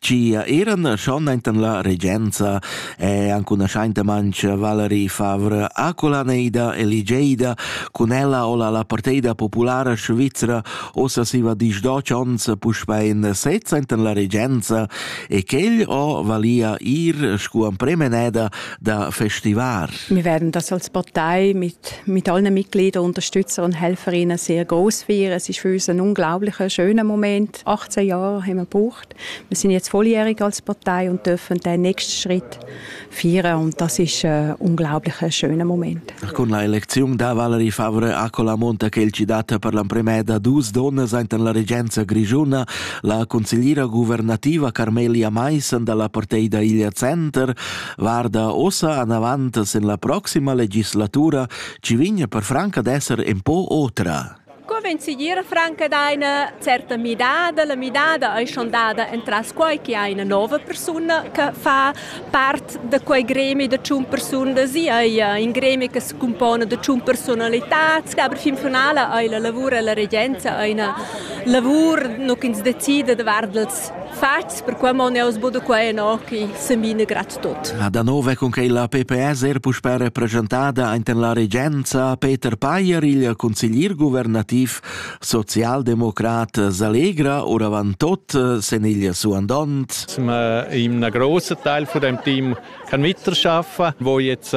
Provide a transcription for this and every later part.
Gia eran schon enten la regenza e anche una scheintemancia Valerie Favre aculaneida e ligeida cun ella o la la parteida populara svizzera ossa siva disdoc ons puspei in sez enten la regenza e quel o valia ir scu an premeneda da festivar. Wir werden das als Partei mit, mit allen Mitgliedern unterstützen und helferinnen sehr groß feiern. Es ist für uns ein unglaublicher, schöner Moment. 18 Jahre haben wir gebraucht. Wir sind jetzt volljährig als Partei und dürfen den nächsten Schritt feiern und das ist ein unglaublich schöner Moment. Con la elezione da Valerie Favre a Colamonta che è citata per l'emprima da dus donne in la regenza grigiuna, la consigliera governativa Carmelia Maissen dalla Parteida Iglia Center guarda ossa an avant sin la prossima legislatura ci vigna per franca d'esser un po otra. Co vegn segir franc ad eine certa midada? La midada ei schon dada entras quei che ha ina nova persuna che fa part da quei gremi da tschun persunas e ei in gremi che se compone da tschun personalitats, aber fin finale ei la lavur e la regenza eine lavur nu ch'ins decida davart els Fats, perquai mon eau sbudo qua enochi, sembina grat tot. A da nov è cun che la PPS er puspè represchentada enten la regenza Peter Payer, il consiglier guvernativ socialdemocrat Salegra, oravant tot sen il suandont. Sind wir in einem grossen Teil von dem Team kann miterschaffen, wo jetzt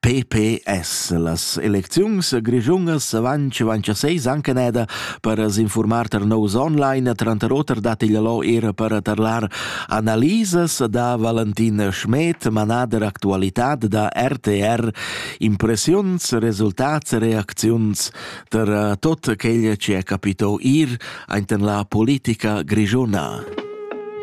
PPS. Las elecziuns grischungas avanti vanchaseis anche neda per s'informar tar nous online, tranter oter dat il lo ir per tarlar analisas da Valentin Schmed, manader actualitad da RTR, impressiuns, resultats, reacziuns ter tot quel che è capito ir aint en la politica grischuna.